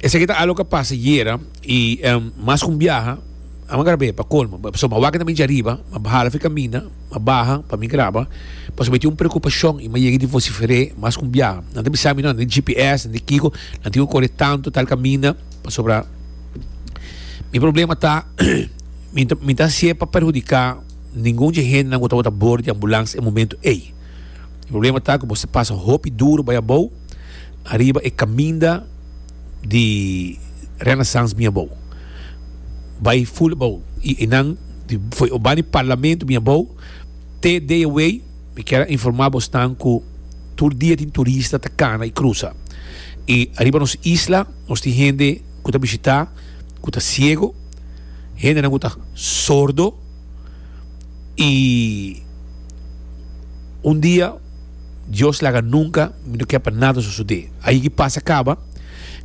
Esaki ta alo ka pasa yera i em, mas ku un biaha a man grab'é pa kolmo. Ba- So, ma wak na mincha riba, ma bahala fi kaminda, ma baha pa mi graba, pasobra mi tin un preokupashon i ma yega di vosifer'é mas ku un biaha. Nan ta bisa mi, no, nan di GPS, nan di kiko, nan tin ku kore tantu tal kaminda, pasobra mi problema ta mi ta mi ta hasié pa perhudiká ningun dje hendenan ku tabata bor di ambulans e momentu ei. Mi problema ta ku boso ta pasa hopi duru bai abou, ariba e caminda di Renaissance mi abou bay full abou y enan fo'i o bani parlamento mi abou te day away mi kier a informa bosnan cu tur dia tin turista ta cana y crusa y ariba nos isla nos tin hende cu ta bishita cu ta ciego hendenan cu ta sordo y un dia Dios laga nunca mi no ke pa nada sosode ahi ki pasa kaba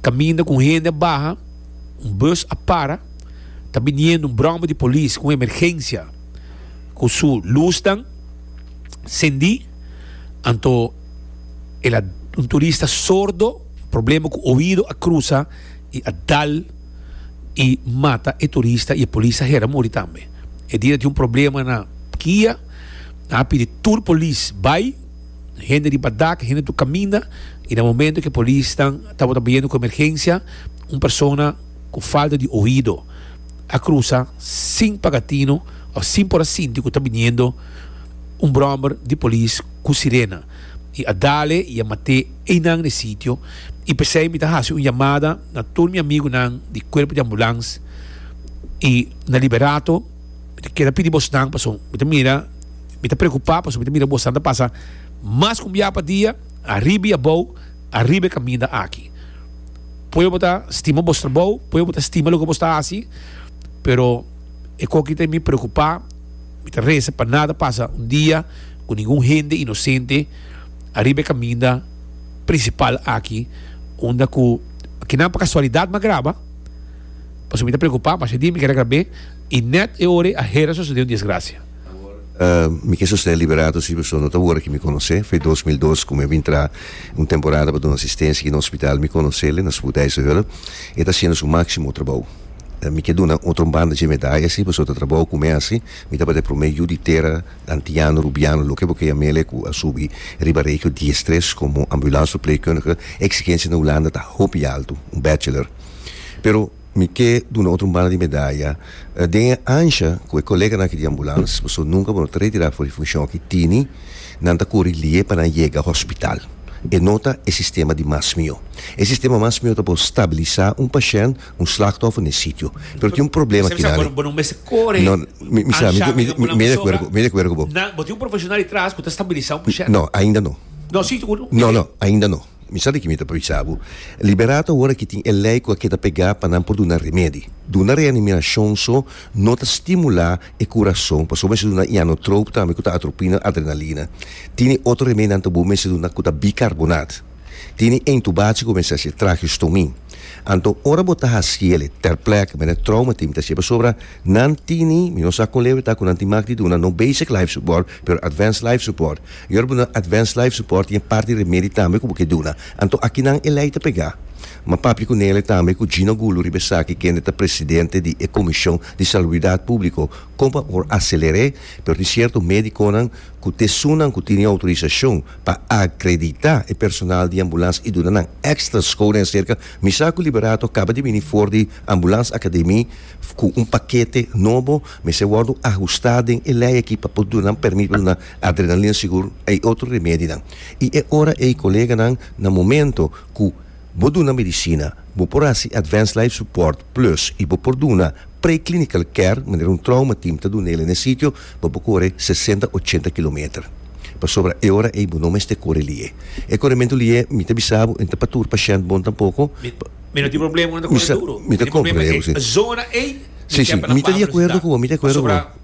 kaminda ku un hende a baha un bus a para ta biniendo un bromba di polis ku un emergencia ku su lusnan sendi anto el a un turista sordo problema ku oido a krusa i a dal i mata e turista i e polis a hera muri tambe e dia tin un problema na kia. Nan a pidi tur polis bai, hende riba dak, hende tur kaminda, i na momento ke polisnan tabata biendo ku emergensia, un persona ku falta di oido a krusa sin paga tino òf sin por a sinti ku ta biniendo un bròmber di polis ku sirena i a dale i a mat'é einan den sitio. I p'esei mi ta hasi un yamada na tur mi amigunan di kuerpo di ambulans i na Liberato. Mi ta kere pidi bosnan pasobra mi ta mira, mi ta preocupa pasobra mi ta mira bosnan ta pasa mas cu un bia pa dia ariba y abao ariba e caminda aki. Pueyo bo ta stima bos trabao, pueyo bo ta stima loke bos ta haci, pero e coki ta mi preocupa, mi ta reza pa nada ta pasa un dia cu ningun hende inocente ariba e caminda principal aki unda cu, aki nan pa casualidad m'a graba. Pasobra mi ta preokupá masha di mi keda grab'é i nèt e ora ei a hera sosodé un disgrasia. Mi ke sosodé Liberato si beso no ta wòrda ke mi konos'é. Fei dos mil dos ku mi a bin tra un temporada pa duna asistensia aki na hospital. Mi konos'el, e na Spoedeisehölle. E ta hasiendo su máksimo trabou. Mi ke duna otro un banda dje medaya si beso ta trabou ku mesi. Mi tabata e promé yu di tera antiano, rubiano, loke bo keya mele ku a subi riba regio diestres komo ambulansverpleegkundige. Eksigensia na Hulanda ta hopi altu, un bachelor. Pero mi ke duna otro un banda di medaya den e ansha ku e koleganan aki di ambulans pasobra nunka bo no ta retirá for di funshon ki tini nan ta kuri lié pa nan yega hospital e no ta e sistema di mas mihó e sistema mas mihó ta por stabilisá un pashènt un slachtòfer na e sitio pero tin un problema aki nan e no mi mi sa mi mi de akuerdo mi de akuerdo ku bo no ainda no no no ainda no. Mi sa di ki mi ta bisa bo. Liberá ta ora ki tin e lei ku a keda pegá pa nan por duna remedi. Duna reanimirashon so no ta stimulá e kurason, pasobra mester duna ianotroop tambe ku ta atropina na adrenalina. Tini otro remedi nan ta bo mester duna ku ta bikarbonaat. Tini entubatie ku mester hasié trageostomy. Anto ora bo ta hasiele ter plek mene trouma tin mi ta hasié pasobra nan tini, mi no sa kon leve ta ku nan tin mak di duna no basic life support pero advanced life support. Yor bo na Advance Life Support tin e parti remedi tambe ku bo ke duna. Anto akinan e lei ta pega? M'a papia ku Nele tambe ku Gino Gulu riba esaki kende ta presidente di e komishon di saluidat públiko kon pa por aseler'é pero tin sierto médikonan ku tesunnan ku tini outorisashon pa akreditá e personal di ambulans i duna nan èkstra sko den serka Misako Liberato kaba di bini for di Ambulans Akademi ku un pakete nobo mester wòrdu ahustá den e lei aki pa por duna nan pèrmit pa duna Adrenalina sigur a e otro remedinan. I e ora ei koleganan na momento ku bo duna medisina, bo por hasi Advanced Life Support Plus i bo por duna Pre-Clinical Care manera un trauma team ta duna el'e na e sitio, bo por kore sesenta, ochenta kilometer. Pasobra e ora ei bo no mester kore li'e. E korementu li'e mi ta bisa bo e no ta pa tur pashènt bon tampoko. Mi no tin problema ku nan ta kore duru. Mi ta kore duru, si. Mi ta di akuerdo ku bo, mi ta di akuerdo ku bo.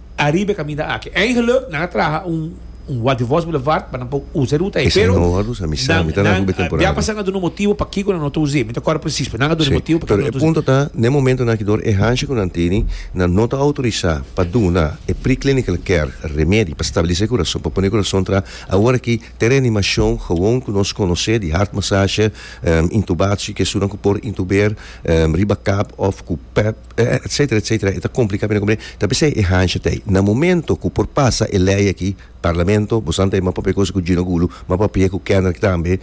Ariba e kaminda aki eingeluk nan a traha un un Walt de Vos Boulevard pa nan por usa e ruta ei. Esei Pero noha dus amisá, nan mi ta nan nan ku be a temporada. bia pasa nan a duna motibu pakiko nan no ta us'é. Mi ta kòrda presis, pero nan a duna e Sí, motibu pakiko pero nan e ta us'é. punto ta, na e momento nan aki dor e hansha ku nan tene, nan no ta outorisá pa duna e pre-clinical care remedi pa stabilisá e kurason, pa pone e kurason tra awor aki te reanimashon gewoon ku nos konos'é di hartmassasje, ehm, intubatie, ke esunan ku por intuber, ehm, riba kap òf ku pèp. etcetera etcetera e ta complica bini comple ta bisai e hansha ta na momento cu por pasa e ley aki parlamento bo san ta ma papia cosa cu Gino Gulu ma papia cu Kendrick tambe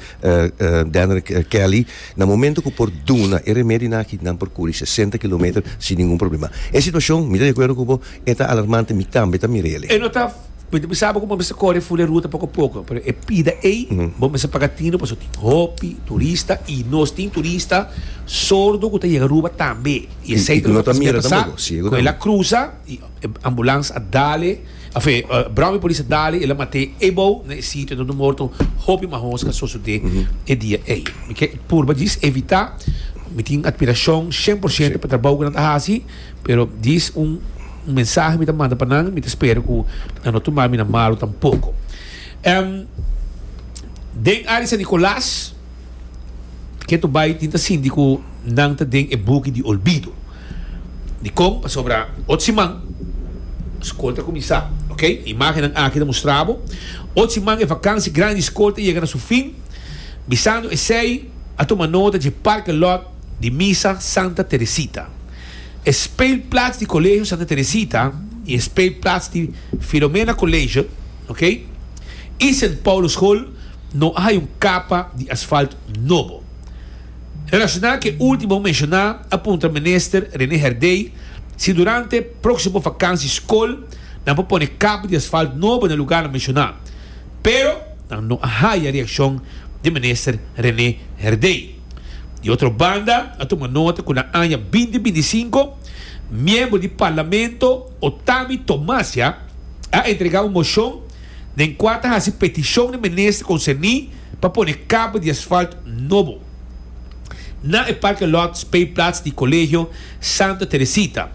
Dendrick Kelly na momento cu por duna e remedio aki nan por curi sesenta kilometer sin ningun problema e situacion mi ta de acuerdo cu bo. E ta alarmante mi tambe ta mira el. E no ta mi ta bisa bo ku bo mester kore ful e ruta poko poko pero e pida ei bo mester paga tino paso tin hopi turista i nos tin turista sordo ku ta yega Aruba tambe i esei ta lo ta mira tambe bo si egu tambe ku el a krusa i ambulans a dale afe brao i polis a dale el a mate ebou na e sitio donde morto hopi mas hoos ka sosode e dia ei mi ke purba djis evita mi tin admirashon shen por shento pa trabou ku nan ta hasi. Pero dis un mensahe mi ta manda pa nan, mi ta spera ku nan no tuma mi na malu tampoko. Em, Den área San Nicolas, Keto bai tin ta sinti ku nan ta den e buki di olbido. Dikon? Pasobra ocho siman skol ta kuminsá, oke? Imágennan aki ta mustra bo. Ocho siman e vakansi grandi di skol ta yega na su fin, bisando esei a tuma nota dje parke lòt, di Misa Santa Teresita, e speelplaats di Colegio Santa Teresita y e speelplaats di Philomena College, ok, y Sint Paulus School no a hay un capa di asfalt nobo. Relaciona cu e ultimo bo menciona a puntra Minister Rene Herdey si durante proximo vakansi school nan por pone capa di asfalt nobo na lugarnan menciona, pero nan no a haya reaccion di Minister Rene Herdey. Di otro banda, a tuma nota cu na aña binti binti sinku, miembro di Parlamento Otami Tomasya a entrega un mocion den cua ta haci peticion na minister concerni pa pone capa di asfalt nobo na e parkelot speelplaats di Colegio Santa Teresita,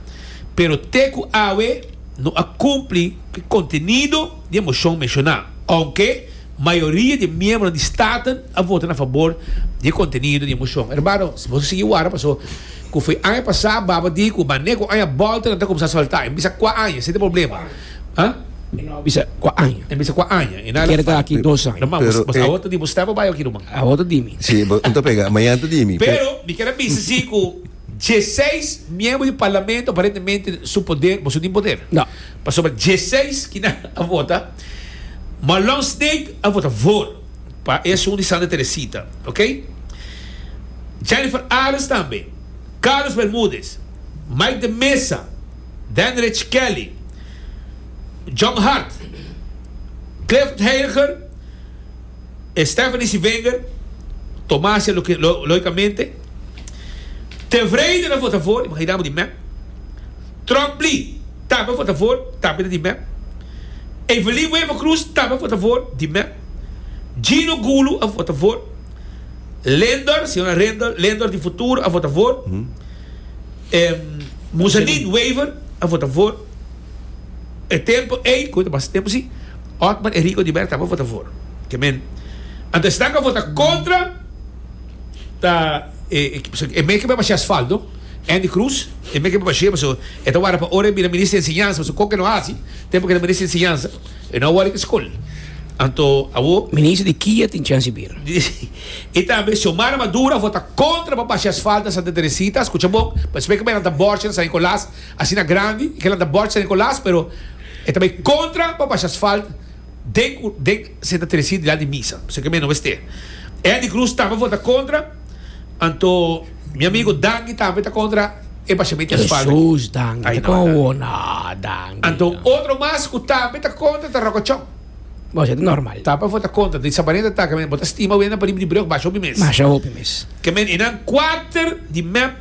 pero te cu awe no a cumpli cu e contenido di e mocion menciona, aunke. Mayoria di e miembronan di Staten a vota na fabor di e contenido di e mocion. Hermano, si nos a sigui wara paso cu foi aña pasa baba di cu maneco aña boltanan ta cuminsa salta. E bisa cua aña, esei ta e problema. Ha? E no a bisa cua aña. E bisa cua aña. E no a quiere ta aki dos aña. Ruman, bos, bos awor ta di bos step o bai oki, ruman? Awor ta di mi. Si, bo no ta pega. Mañana ta di mi. Pero mi kier a bisa si cu dieseis miembro di parlamento aparentemente su poder, boso tin poder. No. Pasobra dieseis kinan a vota. Ma Long Snake a vota voor pa e asun di Santa Teresita, ok. Jennifer Arends tambe, Carlos Bermudez, Mike de Meza, Denrich Kelly, John Hart, Clifford Heiliger, e Stephanie Civinger, Tomasia loicamente, tevreden a vota voor, imagina bo di mep. Trump Lee tambe a vota voor, tambe ta di mep. Evelyn Wever Cruz tambe a vota for di mep. Gino Gulu a vota for. Lendor, señora Lendor, Lendor di Futuro a vota for. Muselin Wever a vota for. E tempo ey, cu ta basta tempo si, Otmar Enrico di Mera tambe a vota for. Ke men. Anto esnan cu a vota contra ta e, e meken mep a haci asfalto. Andy Cruz, e make e bashea pasobra e ta warda pa ora e bira Minister di Enseñansa, pasobra con ke e lo haci tempo ke e ta Minister di Enseñansa e no a wòrda di scol. Anto awo. Minister di kia tin chance di bira? Y tambe Xiomara Maduro a vota contra pa basha asfalto na Santa Teresita, a scucha bon, pa espe ke bay lanta Borgia na San Nicolas asina grandi y ke lanta Borgia na San Nicolas pero e ta bay contra pa basha asfalto. den cu den se ta treci dilan di misa, p'esei cu mi a no mester. E Andy Cruz tambe for ta contra, anto mi amigo Danky tambe ta contra e bashamiento di espalda aki. Jesus, Danky Ay, ta no, con Danky. awo, no, Danky. Anto no. otro mas cu tambe ta contra ta Rocochon. Bo siente normal. Tambe for ta contra, di Sabarenda ta, Carmen, bo ta stima wenda pa riba di brug, basha hopi mes. Basha hopi mes. Carmen, e nan cuater di mep.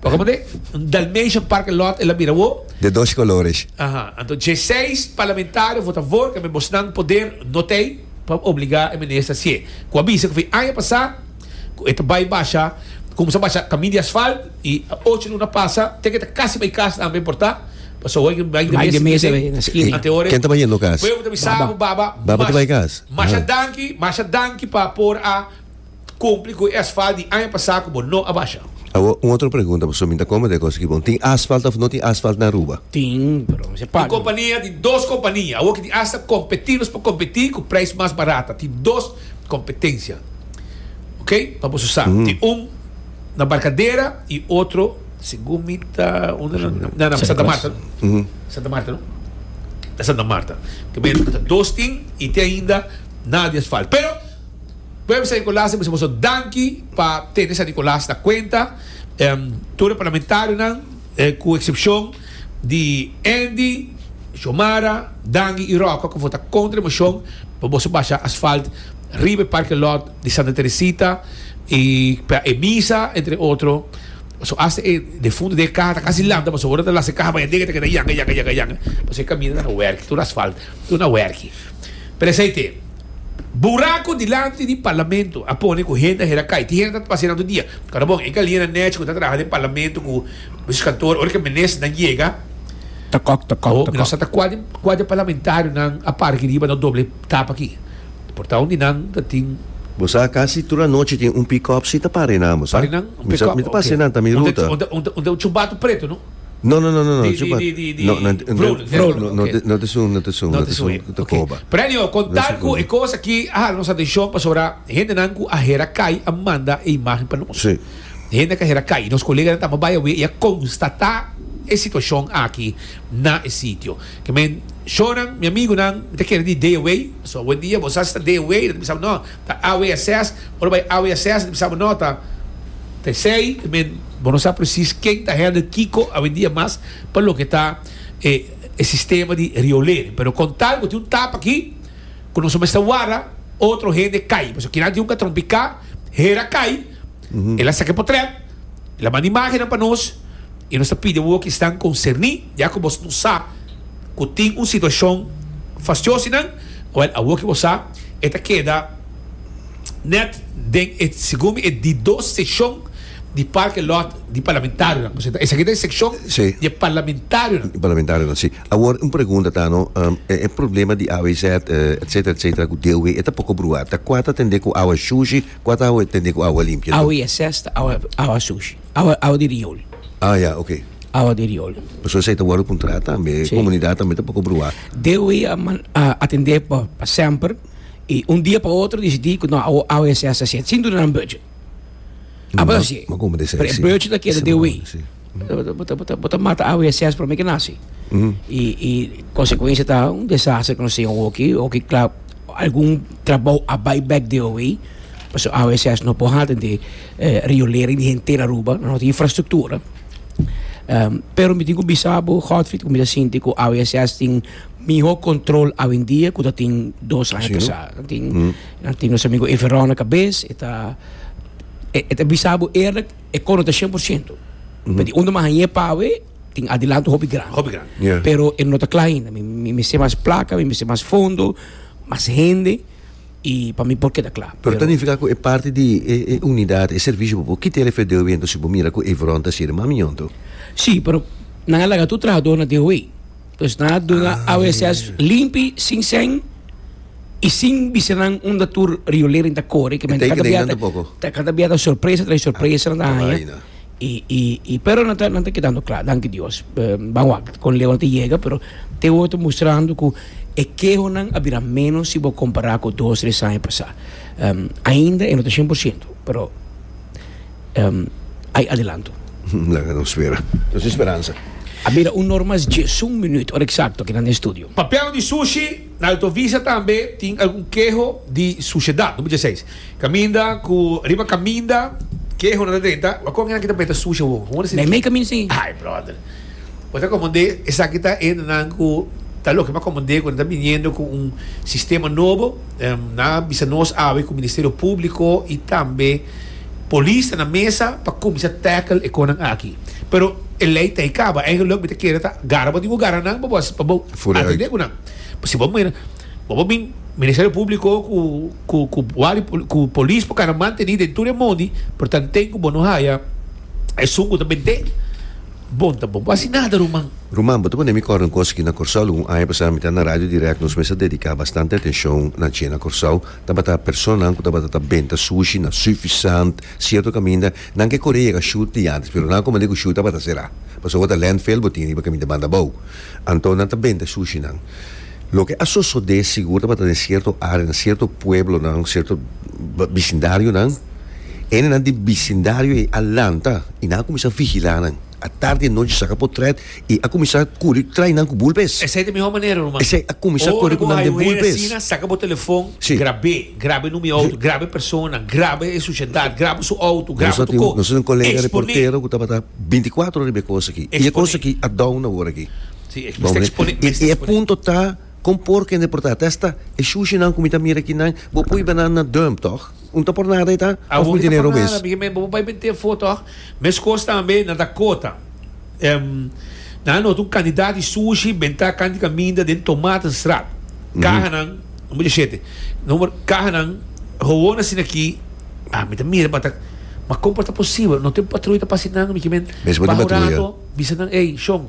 Pa como de un Dalmatian parke lot el a mira wo. De dos colores. Aha, anto dje seis parlamentario vota a for cambe bosnan poder no tey pa obliga e minister hacie. Cu a bisa cu fin aña pasa cu e ta bay basha, cuminsa basha camin di asfalt y ocho luna pasa te cu e ta casi bay cas tambe por ta paso awor ey bay de mes a bay na esquina. Ante awor Ken ta bay yendo cas? Baba. Baba ta bay cas. Masha danki, masha danki pa por a. kumpli ku e asfalt di aña pasá ku bo no a basha. Awo un otro pregunta, pasobra mi ta kome ta e kos aki bon. Tin asfalt òf no tin asfalt na Aruba? Tin, pero mi sepa. Tin kompania, tin dos kompania awo ki tin asta kompetí nos pa kompetí ku preis mas barat. Ta tin dos kompetensia, ok, pa boso sa. Tin un na Barkadera i otro segun mi ta unda nan na na na Santa Marta no? Santa Marta no? Na Santa Marta. Ke men ta dos tin i tin ainda nada di asfalt. Pero. Pueblo San Nicolas ta bisa boso danki pa tene San Nicolas na cuenta. Tur e parlamentarionan, cu excepcion di Andy, Xiomara, Dangi y Rocco cu vota contra e mocion pa boso basha asfalt riba e parking lot di Santa Teresita y pa e misa entre otro, so hasta e defunto den e caha ta casi lanta boso worde ta lasa e caha baya den e ta keda yanga yanga yanga yanga pasobra e camino no a werki tur asfalt tur no a werki pero esey te. Buraco dilanti di Parlamento a pone cu hende a hera cay. Tin hende ta pasé nan tur dia. Ora bon, e Galiana Nech cu ta traha den Parlamento cu Mister Kantoor, ora cu Ministernan yega, Ta kòk, ta kòk, Oh, ta mi no kòk. sa ta cua di, cua di e Parlamentarionan a para aki riba, no doble tap aki. Por ta un di nan ta tin. Bo sa, casi tur anochi tin un pick-up si ta para enan, bo sa. Para enan un Mi sa, pick-up, mi ta ok. pase nan ta mi Un ta, ruta. un ta, un ta, un ta un chumbato preto, no? No no no no no. Di di di di di Vrul Vrul okay. No te sun no te sun no te sun cu ta coba. Okay. Pero anyhow con tal cu e cos aki a hala nos atencion pasobra hendenan cu a hera cay a manda e imagen pa nos. Si. Hende cu a hera cay. Nos coleganan ta bay awe y a constata e situacion aki na e sitio. Ke men shornan mi amigunan mi ta kere di day away pasobra awe en dia bo sa si ta day away lo ta bisa bo no. Ta AWSS, ora bay AWSS ta bisa bo no ta Tessey, I mean bo no sa precies ken ta handle kiko awendia mas pa loke ta e sistema di riolering, pero con tal bo tin un tap aki cu nos mester warda otro hende cay, pasobra kinan tin un catron pica hera cay. El a saca e potret, el a manda imagennan pa nos y nos ta pidi awo cu esnan concerni, ya cu boso no sa cu tin un situacion fastioso y nan, wel awo cu bo sa e ta keda net den e, segun mi, e di dos seccion di parking lot di parlamentarionan. Bo sienta? Esaki ta e seccion di e parlamentarionan. Parlamentarionan, si. Awor un pregunta ta no, e problema di AWZ, etcetera, etcetera, cu DOW e ta poco brua, ta cua ta tende cu awa shushi? Cua ta awe tende cu awa limpia? Awa e ses ta awa, awa sushi. Awa, awa di riol. Ah ya, ok. Awa di riol. Pasobra esei ta wordo puntra tambe. Si. Comunidad tambe ta por brua. Dewey a man, a atende pa, pa semper y un dia pa otro decidi cu no, awa, awa e ses ta siet, sin duna nan budget. Abo ta siet. Ma como ta siet? Pero e budget ta keda Dewey. Bo ta mata awe e sèspero mi ke nasi. I konsekuensia ta un desaster ku nos tin awoki, awoki kla algun trabou a bai bèk di awe, pasobra awe e sèspero no por hala den di riolering di henter Aruba, no tin infrastruktura. Pero mi tin ku bisa bo, Godfrid, ku mi ta sinti ku awe e sèspero tin mihó kontrol awendia ku ta tin dos aña pasá. Nan tin, nan tin nos amigu Everon na kabes, e ta, e ta bisa bo eerlik. e cono ta 100%. Pero di unda mas añe pawe, tin adelanto hopi gran. Hopi gran. Yeah. Pero e no ta kla ainda. Mi, mi, mi se mas plaka, mi, mi se mas fondo, mas hende, i pa mi por keda kla. Pero ta nifica cu e parte di e, e unidad, e servicio bobo, ki te refer DOW entonces si bo mira cu Evron ta sirve mami yonto? Sí, pero nan a laga tur trahador na DOW. Nos na dunga ah, AWSS yeah. limpi, sin sen i sin bisenan unda tur riolering ta kore. Ke men kada biata, ta kada biata sorpresa trai sorpresa ah, na haya. I, i, i, pero nanta, nanta quedando klaar, dank Dios. Uh, Bawa, kon lewa te yega, pero te wo te mostrando ku e keho nan a bira menos si bo kompara ku dos, tres aña pasa. Um, ainda e no ta 100%, pero Ai adelanto. Laga nos spera. Nos tin speransa. A mira un nor mas diesun minüt, ora eksakto, aki na nos estudio. Papel di sushi, na Alto Vista tambe tin algun keho di sushedat, number dieseis. Kaminda ku riba kaminda kehonan ta drenta, Wak kon esaki ta mete sushi awor? Kon wòrdu si di ki? Mei kaminda si. Ai bròder. Bo ta komand'é esaki ta e nan ku ta loke pa komand'é ku nan ta biniendo ku un sistema nobo. Na bisa nos awe ku Ministerio Públiko i tambe polis ta na mesa pa kuminsá tackle e konan aki. Pero e lei ta ei kaba. Eigenluk mi ta kere ta gara bo di bo gara nan pa bo pa bo atendé ku nan. Pasobra si bo mira bo por bin Ministerio Públiko ku ku ku wari ku polis por kara mantení den tur e mondi, pero tanten ku bo no haya esun ku ta bent'é. Bon ta bon. Bo a hasi nada ruman. Ruman, bo ta pone mi kòrda un kos aki na Kòrsou. Algun aña pasá mi ta na Radio Dirèkt, nos mester dediká bastante atenshon na dje na Kòrsou. Tabata personanan ku tabata ta benta sushi na Suffisant, sierto kaminda. Nan ke kore yega Shur di antes, pero nan a komand'é ku Shur tabata será. Pasobra ta lènt fel, bo tin riba kaminda banda abou. Anto nan ta benta sushinan. Loke a sosodé sigur tabata den sierto área, na sierto pueblonan, sierto bisindarionan. Hendenan di bisindario ei a lanta i nan a kuminsá vigilá nan. A tardi i a nochi saka potrèt i a kuminsá kuri trai nan ku bulpes. Esei ta mihó manera, ruman. Esei a kuminsá kore ku nan den bulpes. Ora ku hay un hende asina, saka bo telefòn, grab'é. Grab'é nu mi outo, grab'é personanan, grab'é e susiedat, grab'é su outo, grab'é su kos. Nos a tin un kolega reportero ku tabata binti kuatro ora riba e kos akí. I e kos akí a dòuna ora akí. Y e punto ta, con por kende por ta? Ta esta e shushi nan cu mi ta mira aki nan, bo pui banan na dump, toch? Un ta por nada e ta? Of mi tene robes? Awor ki ta por nada, bo bai bini te fo, toch? Mescos tambe nan ta cota. Nan a nota un cantidad di shushi benta canti caminda den Tomatenstraat. Cahanan, un boca shete, number, cahanan gewoon asina aki, ah, mi ta mira pa ta, ma con por ta posibel? No ten patrui ta pasa nan, mi kimen, baho rato bisa nan, ey, shon.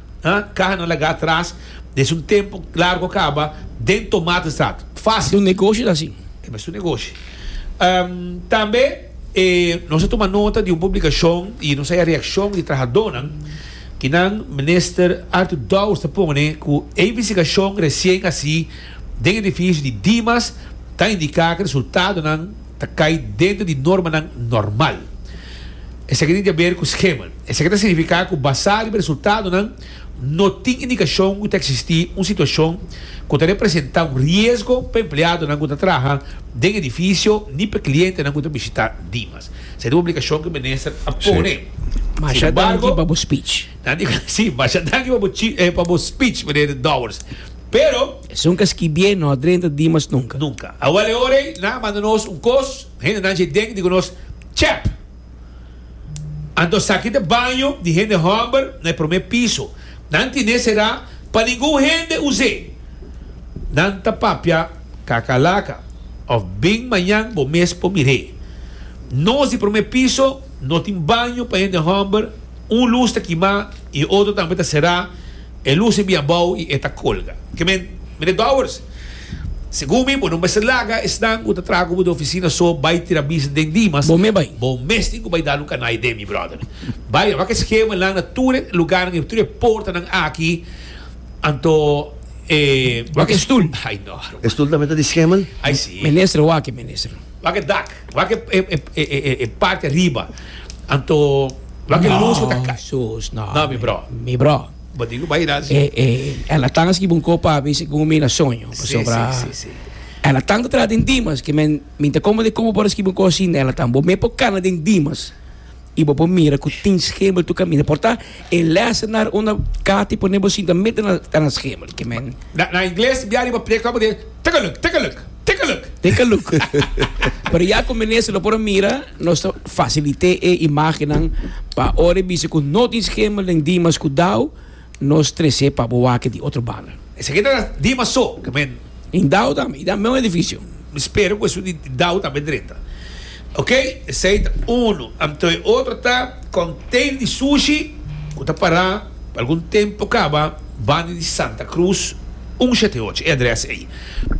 Ha? Caha nan laga atras desde un tempo largo caba den Tomatenstraat. Facil. Un negoshi ta así. E mester un negoshi. Ehm, tambe e nos a tuma nota di un publicacion y nos a haya reaccion di trahadonan ki nan Minister Arthur Dowers ta pone cu e investigacion recien haci den edificio di Dimas ta indica cu e resultadonan ta kai dentro di normanan normal. Esaki tin di haber ku skema. Esaki ta signifiká ku basá riba resultadonan no tin indikashon ku ta eksistí un situashon ku ta representá un riesgo pa empleadonan ku ta traha den edifisio ni pa klientenan ku ta bishitá Dimas. Esei ta un obligashon ku minister a pone. Sin embargo, nan di, sí, masha danki pa bo speech, Meneer Dowers, pero. Esun ka skibié no a drenta dimas nunka. Nunka. Awa le ora ei nan a manda nos un kos, hendenan dje den di ku nos tjèp. Anto a saki te baño di hende hòmber na e promé piso. Nan tine será pa ningun hende us'é. Nan ta papia kakalaka òf bin mañan bo mes por mir'é. Nos di promé piso no tin baño pa hende hòmber, un lus ta kimá i otro tambe ta será. E lus e bia abou y e ta colga. Ke men, Meneer Dowers, segun mi bo no mester laga esnan cu ta traha cu bo den oficina so bay tira bisa den Dimas. Bo me bay. Bo mes tin cu bay dal un canai den mi, brother. Bay, a wak e schema nan na tur e lugarnan y tur e portanan aki, anto e. Wak e stoel. Ay no, Armando. E stoel tambe ta di schema? Ay si. Minister, wak e, Minister. Wak e dak, wak e e parti ariba, anto wak e lus ku ta kai. Sus no. No mi bro. Mi bro. Bo di ku bai hira si. E e el a tanga skiba un kop papi si ku mi na soño pasobra el a tanga traha den dimas ke men mi ta komo di komo por a skiba un kos asin el a tanga bo me por kana den dimas. y bo por mira cu tin schemel tu camina. Por ta e lessenaar unda Cathy pone bo sinta mete na, ta na schemel. Que men, Na, na Ingles, bia riba preca bo di, take a look, take a look, take a look. take a look. Pero ya cu minister lo por a mira, nos ta facilite e imagennan pa ora e bisa cu no tin schemel den Dimas cu Dao, Nos trece pa bo wak di otro banda. Esaki ta di paso ke men. In dau tambe, i ta men un edificio. Mi spero ku esun di dau tambe drenta. Ok, esei ta unu. Anto e otro ta contain di sushi ku ta para pa algun tempo kaba banda di Santa Cruz un shete ocho. E adres ei.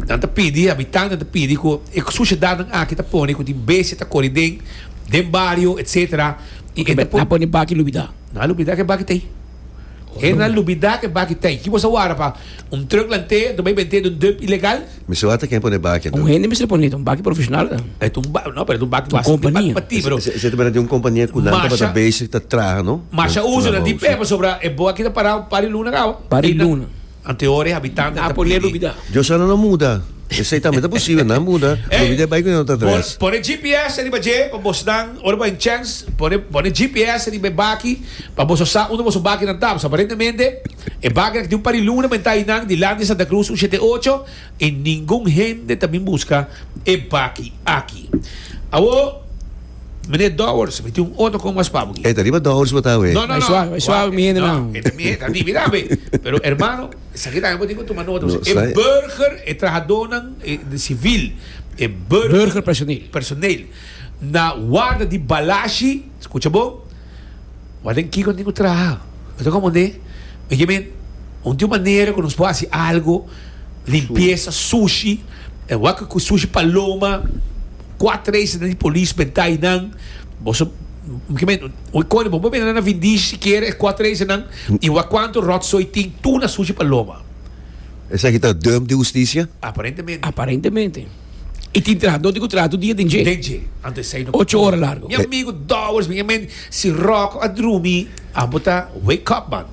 Nan ta pidi, habitantenan ta pidi ku e sushedarnan aki ta pone ku tin bestia ta kore den den bario, etcetera. Nan a pone baki lubida. Nan a lubida ke baki ta ei. Henry lubida ke baki tei. Ki bo sa wara pa un truck lantee anto bay bentee den dump ilegal? Mi si wata ken pone baki anto. Un hende mi si pone ta un baki profesional ta. Et un ba no pero et un baki basi di baki pa ti pero. Ese ta bira di un kompania ku nan tabata bezig ta traha no. Masha uso nan di pea pasobra e boa ki ta parao un par di luna kawa. Par di luna. Ante ora e habitantenan ta pidi. Dios a nan muda. Esei tambe ta posibel, nan muda. Lo bida e bai ku nan otro adres. Por pone GPS riba dje pa bosnan, ora bo hay un chance, pone, pone GPS riba e baki pa boso sa unda boso bakinan ta. Pasobra aparentemente e bakinan ku tin un par di luna men ta einan dilanti di Santa Cruz un shete ocho. I ningun hende ta bin buska e baki aki. Awo, Meneer Dowers, mi tin un otro con mas pabo aki. E ta riba Dowers bo ta awe. No, no, no. Bai suave, bai suave mi hende nan. E ta mi hende, ta di, mira awe. Pero hermano, esaki tambe bo tin cu tuma nota bo si. E burger, e trahadonan civil, e burger. Burger personeel. Personeel na warda di balashi, scucha bon. Wak den kiko tin ku traha. Mi ta komprendé. Mi ke men, un di un manera ku nos por hasi algu, limpiesa, sushi, e wak ku sushi paloma, kuat reis den di polis bentá einan. Boso, mi ke men, un kos bo por bira na Vindish sikiera e kuat reis einan i wak kuantu ròtsoi tin, tuna, sushi, paloma. Esaki ta dùmp di hustisia? Aparentemente. Aparentemente. E tin trahadó di kontratu dia den dje. Den dje, ante esei no. Ocho ora largo. Mi amigu Dowers mi gemen si Rocko a drumi abo ta wake up man.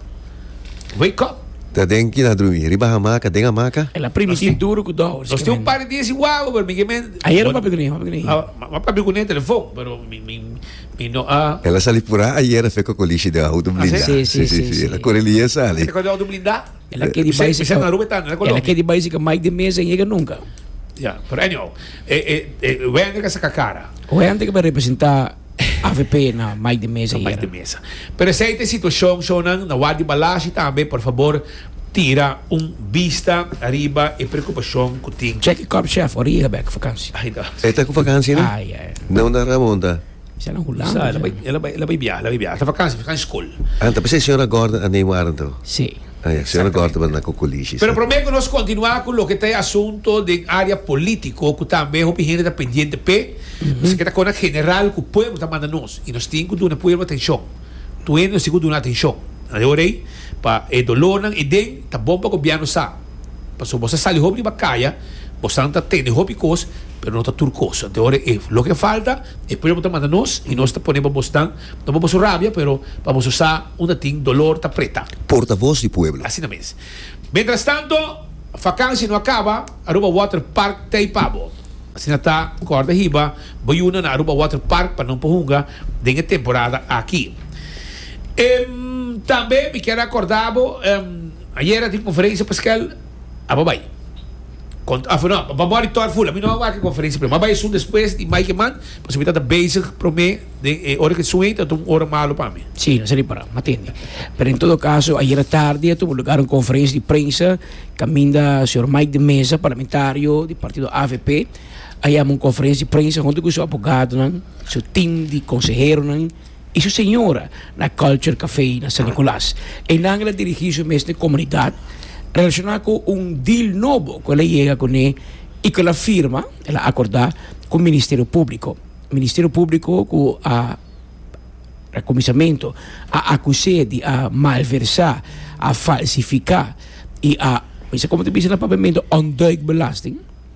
Wake up. Ta den kin a drumi? Riba hamaka? Den hamaka? El a primiti duru ku Dowers gemen. Nos tin un par di dia sin wawa pero mi gemen. Ayer abo m'a papia kuné? M'a papia kuné ayer? M'a papia kuné telefon pero mi no a. El a sali purá ayer afeku kolishi den outo blindá. Así? Sí sí sí el a kore liga sali. Tabata ku e outo blindá? El a kedi bai si Michel Narume ta na Colombia. El a kedi bai si ka Mike de Mesa yega nunka. Ja, pero anyhow, e, e, e, Wender ka saka cara. Wender ka bai representa AVP na Mike de Mesa yega. Mike de Mesa. Pero esei te situacion, shownan, na Wadi Balashi tambe, por favor, tira un bista ariba e preocupacion cu tin. Check e cop chef, ora yega bek, vakansi. Ai, no. E ta cu vakansi, no? Ai, ai. No na Ramon ta. Sa nan Hulanda. Sa, ela bai, ela bai, ela bai biaha, ela bai biaha. Ta vakansi, vakansi skol. Ah, ta pens'é señora Gordon a name Warren to? Sí. Ah, ya, señora Gordon bai na ku Kulishi, Pero sí. promé ku nos kontinuá ku loke ta e asunto den área polítiko ku tambe hopi hende ta pendiente p'e, nos a keda kon na general ku pueblo ta manda nos i nos tin ku duna pueblo atenshon. Tur hende nos tin ku duna atenshon. Nan e ora ei, pa e dolónan ei den, ta bon pa gobièrnu sa. Pasobra boso a sali hopi riba kaya, bosonan ta tende hopi kos, pero no ta tur kos. Nan ta e ora ei. Loke falta. E pueblo ta manda nos y nos ta pone pa bos tan, no pa boso rabia, pero pa boso sa unda tin dolor ta preta. Portavoz di pueblo. Asina mes. Mientras tanto, vakansia no a kaba, Aruba Water Park ta ei pa bo. Asina ta, kòrda hiba bo yuna na Aruba Water Park pa no por hunga den e temporada aki. Tambe mi kier a kòrda bo, ayera tin conferencia Pascual A bo bai. Con a no, bo mor di tor fula. Mi no a wak e conferencia prome. Mi a bai esun despues di Mike man, pasobra mi tabata bezig prome den e ora cu e sun ei tabata un ora malo pa mi. Sí, nos a ripara. Mi a tende. Pero en todo caso, ayera tardi a tuba lugar un conferencia di prensa caminda señor Mike de Meza, parlamentario di partido avp, a yama un conferencia di prensa hunto cu su abogadonan, su team di conseheronan. y su señora na Culture Café na San Nicolas. Enan el a dirigi su mes n'e comunidad relaciona cu un deal nobo cu el a yega cu ne y cu el a firma, el a acorda, cu Ministerio Publico. Ministerio Publico cu a na cuminsamentu a acus'e di a malversa, a falsifica y a, mester como ta bisa na Papiamento, ontduik belasting.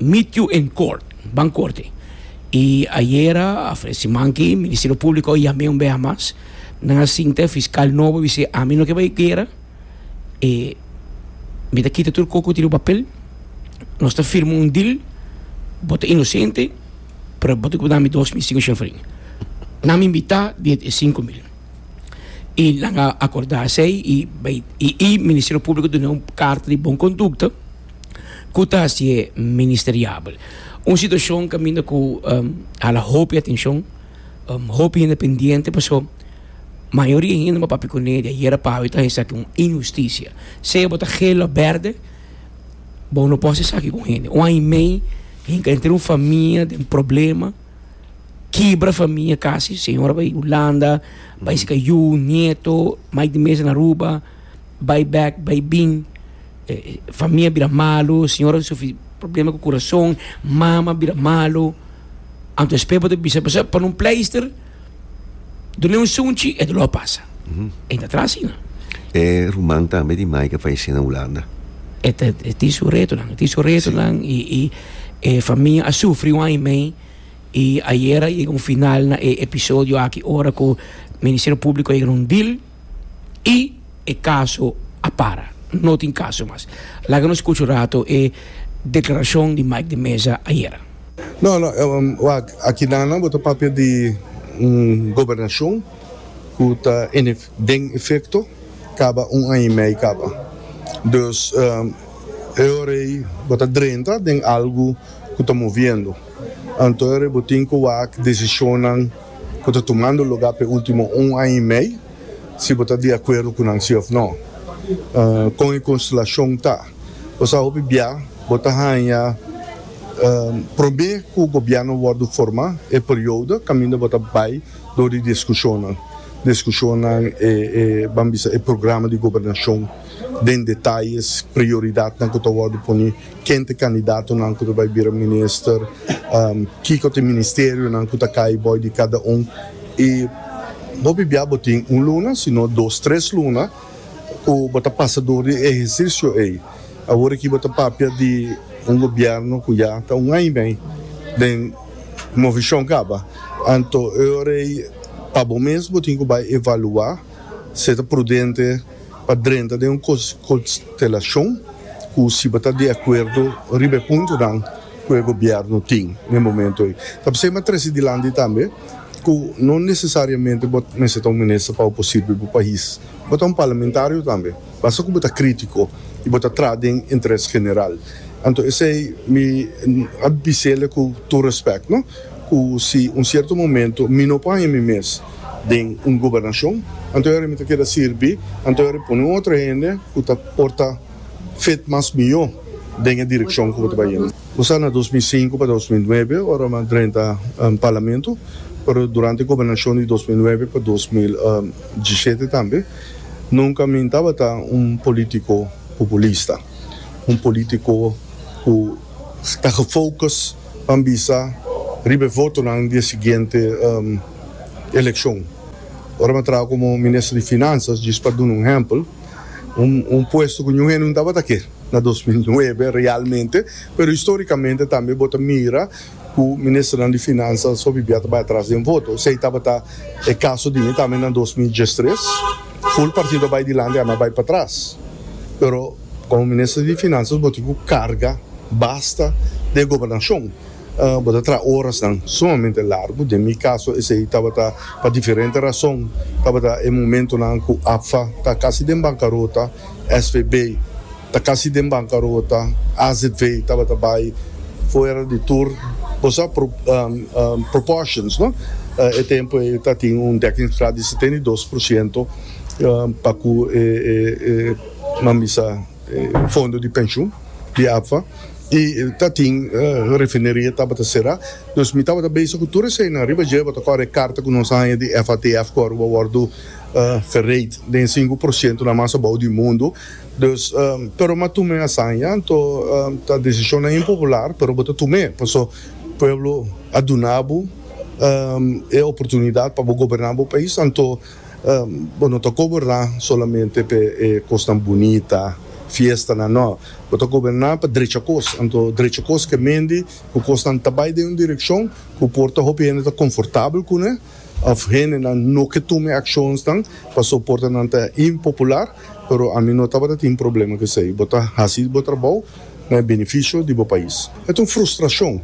Meet you in court, ban korte. I ayera, afre simanki, Ministerio Públiko a yam'é un beha mas. Nan a sinta, e fiskal nobo a bis'é, ami no ke bai guera, e mi ta kita tur kos ku tin riba papel, nos ta firma un dil, bo ta inosente, pero bo tin ku dami dos mil sinku shèlfrin. Nan mi mitá di e sinku mil. I nan a akordá esei i bai i Ministerio Públiko dun'é un karta di bon kondukta. ku ta hasié ministeriabel. Un situashon kaminda ku hala hopi atenshon, hopi hende pendiente pasó mayoria hende bo a papia kuné di ayera pa awe ta esaki un inhustisia. Sea bo ta hel òf bèrdè bo no por hasi esaki ku un hende. Un aña i mei hinka entre un famia den problema, kibra famia kasi. Señora bai Hulanda, bai si ka yu, nieto, mai di mes den Aruba. bai bek bai bin famia bira malu siñora ta sufri problema ku kurason mama bira malu anto espe bo ta bisa pasá pone un pleister dun'e un sunchi e dolor pasa e ta tra asina E ruman tambe di Mike a falesé na Hulanda. e ta e tin su retonan e tin su retonan i i e famia a sufri un aña i mei i ayera a yega un final na e episodio aki ora ku Ministerio Públiko a yega na un deal y e caso a para, no tin caso mas. Laga nos scucha un rato e declaracion di Mike de Meza ayera. No, no, wak, akidanan bo ta papia di un gobernacion cu ta den efecto caba un aña y mei caba. Dus, e ora ey bo ta drenta den algo cu ta moviendo. Anto e ora ey bo tin cu wak decisionnan ku ta tumando lugá p'e último un aña i mei, si bo ta di akuerdo ku nan si òf nò. Kon e konstelashon ta? Bo sa hopi bia bo ta haña probé ku gobièrnu wòrdu forma e periodo kaminda bo ta bai dor di diskushonnan. Diskushonnan e, ban bisa, e programa di gobernashon den detayes, prioridatnan ku ta wòrdu poni. Ken ta e kandidatonan ku ta bai bira minister? Kiko ta e ministerionan ku ta kai bou di kada un? I bo bibiá bo tin un luna sino dos, tres luna ku bo ta pasa dor di e ehersisio ei. Awor aki bo ta papia di un gobièrnu ku ya ta un aña mei den movishon kaba. Anto e ora ei pa bo mes bo tin ku bai evaluá si e ta prudente. Pa drenta den un konstelashon ku si bo ta di akuerdo riba e puntonan ku e gobièrnu tin na e momentu ei, ta p'esei mi a trese dilanti tambe ku no nesesariamente bo mester ta un minister pa bo por sirbi bo pais. Bo ta un parlamentario tambe, basta ku bo ta krítiko i bo ta traha den interes general. Anto esei mi a bis'el ku tur respèkt no, ku si un sierto momentu mi no por haña mi mes, den un gobernacion, anto Harry mi ta keda sirbi, anto Harry pone un otro hende cu ta por ta fit mas mijo den e direccion cu bo ta bay yendo. Bo sa na dos mil sinku pa dos mil nuebe ora mi a drenta Parlamento, pero durante e gobernacion di dos mil nuebe pa dos mil diesisiete tambe, nunca mi tabata un politico populista, un politico cu ta gefocus pa bisa riba e votonan di e siguiente. elekshon. Ora mi a traha komo minister di Finansas, djis pa duna un ehèmpel, un puesto ku ñu hende no tabata ke na dos mil nuebe realmente, pero histórikamente tambe bo ta mira ku ministernan di Finansas so bibia ta bai atras den voto. Esei tabata e kaso di mi tambe na dos mil diestres, ful partido a bai dilanti ami a bai pa tras, pero komo minister di Finansas bo tin ku karga basta di e gobernashon. Bo ta traha orasnan sumamente largu. Den mi kaso esei tabata pa diferente rason. Tabata e momentunan ku APFA ta kasi den bankarota, SVB ta kasi den bankarota, AZV tabata bai fuera di tur. Bo sa proportions, no? E tempu ei ta tin un dekkingsgraad di setenta i dos por siento pa ku e mambisa fondo di penshun di APFA. i ta tin refineria tabata sera nos mi tabata bese ku tur esei nan riba dje bo ta kore e karta ku nos a haña di FATF ku ora bo a wòrdu fereit den sinku por siento na mas abou di mundu dus pero mi a tum'e hasaña anto ta desishonnan impopular pero bo ta tum'e paso pueblo a duna bo e oportunidat pa bo goberná bo pais anto. Bo no ta goberná solamente p'e e kosnan bunita, fiestanan, nò. Bo ta goberná pa drecha kos. Anto drecha kos ke mendi ku kosnan ta bai den un direkshon ku por ta hopi hende ta konfortabel kuné òf hendenan no ke tuma e akshonsnan pasobra por ta nan ta impopular. Pero ami no tabata tin problema cu esey. Bo ta haci bo trabou na e beneficio di bo pais. E ta un frustracion.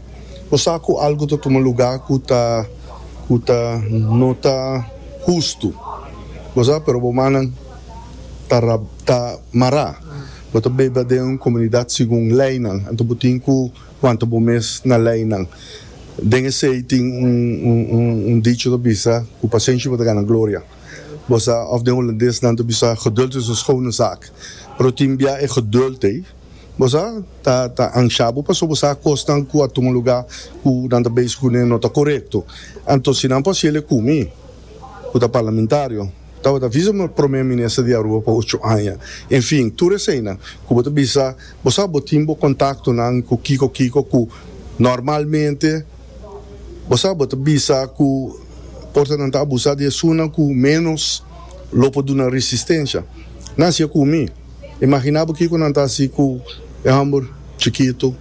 Bo sa cu algo ta tuma lugar cu ta cu ta no ta hustu. Bo sa, pero bo mannan ta ra ta mara. Bo ta beba den un comunidad segun leynan. Anto bo tin cu wanta bo mes na leynan. Den esey tin un un un dicho ta bisa cu pacencia bo ta gana gloria. Bosa of den Holandes nan ta bisa geduld is een schone zaak. Pero tin bia e geduld ei bosa ta ta ansha bo pasobra bo sa kosnan ku a tuma luga ku nan ta bezig kuné no ta korekto. Anto si nan por hasiele ku mi ku ta parlamentario tabata visa mi promé minister di Aruba pa ocho aña. En fin, tur eseinan ku bo ta bisa bo sa bo tin bo kontaktonan ku kiko kiko ku normalmente. Bo sa bo ta bisa ku por ta nan ta abusá di esunnan ku ménos lo por duna resistensia? Nan hasié ku mi. Imaginá bo kiko nan ta hasi ku e hòmber chikitu,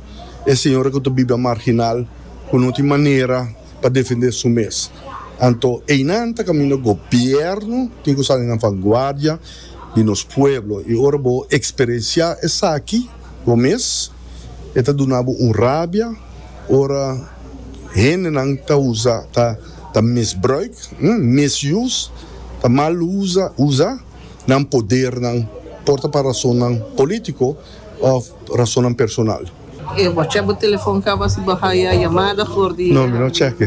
e señora ku ta bibia marginal ku no tin manera pa defendé su mes. Anto einan ta kaminda gobièrnu tin ku sali nan vanguardia di nos pueblo. I ora bo eksperensiá esaki. Bo mes e ta duna bo un rabia ora hendenan ta usa, ta ta misbruik, misuse, ta mal usa, usa nan podernan, por ta pa rasonnan polítiko òf rasonnan personal. E bo a chèk bo telefòn kaba si bo haya yamada for di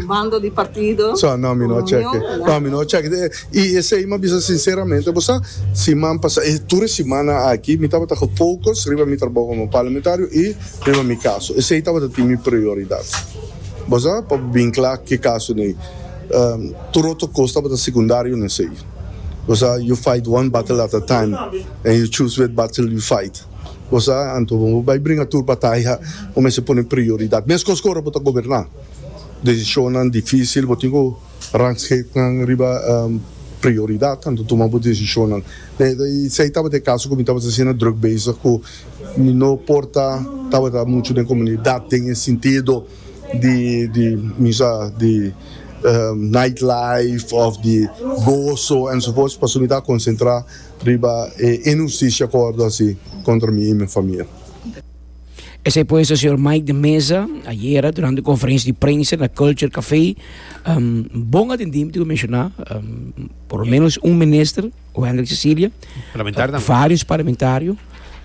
bando di partido, union? I esei mi a bisa sinseramente bo sa, siman pasa, e tur e simana aki mi tabata ku focus riba mi trabou komo parlamentario i riba mi kaso. Esei tabata tin mi prioridat. Bo sa, pa bo bin kla ke kaso n'ei, tur otro kos tabata sekundario n'esei. Bo sa, you fight one battle at a time and you choose wet battle you fight. Bo sa, anto bo bai bringa tur bataya, bo mester pone prioridat. Meskos ku ora bo ta goberná, desishonnan difisil bo tin ku. Rangschiktnan riba prioridad anto tuma bo decisionnan. Esey tabata e caso cu mi tabata asina druk bezig cu mi no por ta tabata mucho den comunidad den e sintido di di mi sa di night life of di gozo enzovoorts pasobra mi ta concentra riba e inhusticia cu a wordo haci contra mi y mi famia. Esei pues a señor Mike de Meza ayera durante un conferencia di prensa na Culture Café. Um, bon atendi, tengo mencionar, um, por lo menos un minister, o Hendrik Cecilia, parlamentario, uh, eh, varios parlamentarios.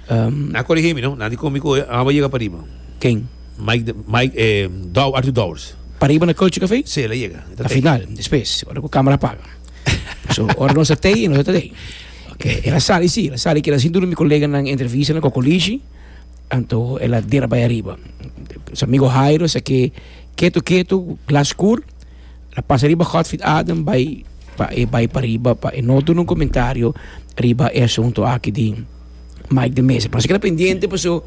Um, na corrige mi, no? Na di comico, eh, amo llega para arriba. ¿Quién? Mike, de, Mike eh, Dow, Arthur Dowers. Para arriba na Culture Café? Sí, le llega. Al final, después, ahora con cámara apaga. so, ahora no se te, no se te. Okay. Era sali, sí, era sali que era sin duda mi colega en entrevista en Cocolici. Anto el a dera bai ariba. Su amigo Hairo es aki ketu ketu, glas skur. El a pasa riba Godfrid Adam bai pa e bai pa riba pa e no duna un comentario riba e asunto aki di Mike de Meza. Pero se keda pendiente paso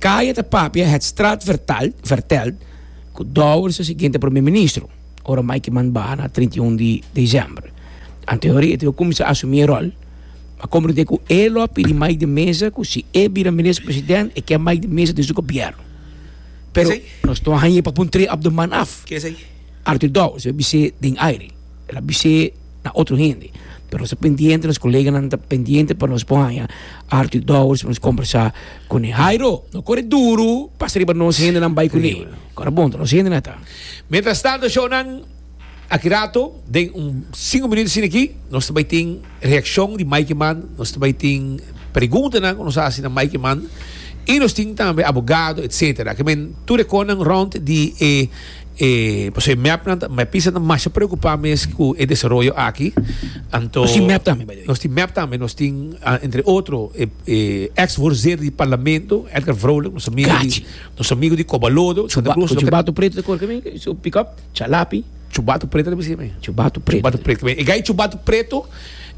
Kaya ta papia het straat vertal, vertelt cu Douwers ta siguiente Premier Ministro ora Mike Kiman baha na trinta i un di december. Anto e hori e ta cuminsa asumi e rol. a comprende cu e lo a pidi mai di mesa cu si e bira minister president e kier mai di mesa den su gobierno. Pero Esey. nos no a haña pa pun tree of the month af. Ke esei? Arthur Dowers a bis'é den aire, el a bis'é na otro hende, pero nos ta pendiente, nos koleganan ta pendiente pa nos por haña Arthur Dowers pa nos combersa cun'é. Jairo, no core duru, pasa riba nos hendenan bai cun'é. Core bon ta nos hendenan ta. Mientras tanto, shownan. Aki rato, den un sinku minuto asina aki, nos ta bai tin reakshon di Mike Mann, nos ta bai tin preguntanan ku nos a hasi na Mike Mann, i nos tin tambe abogado etsetera. Ke men tur e konan rònt di e e pasobra e mèpnan ta mèpisanan ta masha preokupá mes ku e desaroyo aki. Anto Nos tin mèp tambe, by the way. nos tin mèp tambe, nos tin entre otro e e eks voorzitter di parlamento Edgar Vrolijk, nos amigu di Gachi. nos amigu di Kobalodo, Santa Cruz, Ku loke chuba tu pretu ta kore ke men, su pikòp. Chalapi, chubatu preto ta bisi tambe. Chubatu preto. Chubatu preto tambe. E gai chubatu preto